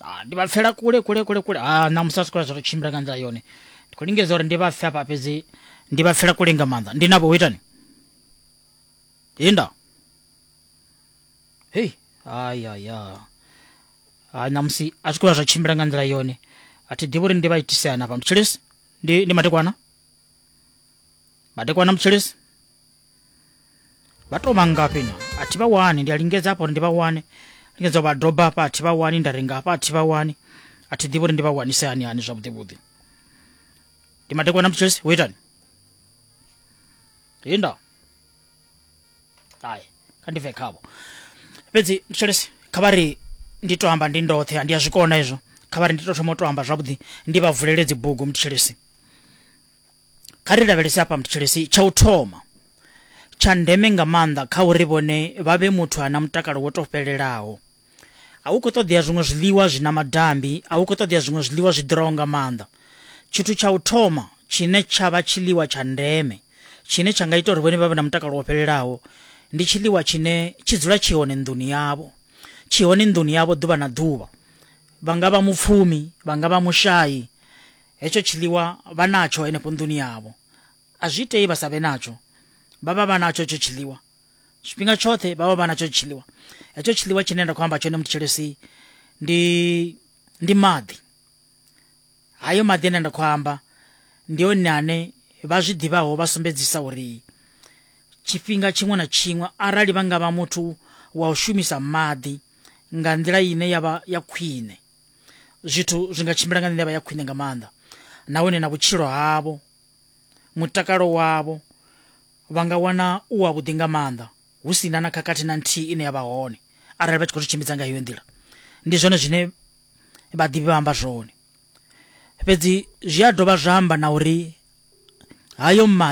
Ah, ndi vha pfela kule kule kule kule ah, ṋamusi a si kula zwa tou tshimbila nga nḓila yone ndi khou lingedza uri ndi vha pfe hafha fhedzi ndi vha pfela kule nga maanḓa ndi navho ho itani inda hei ayaya ah, ṋamusi a si kula zwa tshimbila nga nḓila yone a thi ḓivhi uri ndi vha itisea na fha mutshilisi ndi, ndi madekwana madekwana mutshilisi vha to vhangafhi na a thi vha wani ndi a lingedza hafha uri ndi vha wane lingedza vha doba hafha a thi vha wani nda renga hafha a thi vha wani a thi ḓivhi uri ndi vha wanise hani hani zwavhuḓi vhuḓi ndi madekwana na mutshesi wo itani hinda ai kha ndi bve khavho fhedzi mutshesi kha vha ri ndi to amba ndi ndoṱhe ndi a zwi kona izwo kha vha ri ndi to thoma u to amba zwavhuḓi ndi vha vulele dzi bugu mutshesi kha ri lavhelese afha mthetshelesi tsha u thoma tsha ndeme nga maanḓa kha uri vhone vha vhe muthu ana mutakalo wo to fhelelaho a u khou ṱoḓea zwiṅwe zwiḽiwa zwi na madambi a u khou ṱoḓea zwiṅwe zwiḽiwa zwi ḓuraho nga maanḓa tshithu tsha u thoma tshine tsha vha tshiḽiwa tsha ndeme tshine tsha nga ita uri vhone vha vhe na mutakalo wo fhelelaho ndi tshiḽiwa tshine tshi dzula tshi hone nḓuni yavho tshi hone nḓuni yavho ḓuvha na ḓuvha vha nga vha mupfumi vha nga vha mushayi hetsho tshiḽiwa vha natsho henefho nḓuni yavho a zwi itei vha sa vhe natsho vha vha vha natsho hetsho tshiḽiwa tshifhinga tshoṱhe vha vha vha natsho tshiḽiwa hetsho tshiḽiwa tshine nda khou amba tshone muthetshelesi ndi ndi maḓi hayo maḓi ane nda khou amba ndi one ane vha zwi ḓivhaho vha sumbedzisa uri tshifhinga tshiṅwe na tshiṅwe arali vha nga vha muthu wa u shumisa maḓi nga nḓila ine ya vha ya khwine zwithu zwi nga tshimbila nga nḓila ya khwine nga maanḓa nahone na vhutshilo havho mutakalo wavho vha nga wana u wa vhuḓi nga maanḓa hu si na na khakhathi na nthihi ine ya vha hone arali vha tshi khou zwi tshimbidza nga heyo nḓila ndi zwone zwine vhaḓivhi vha amba zwone fhedzi zwi a dovha zwa amba na uri hayo maḓi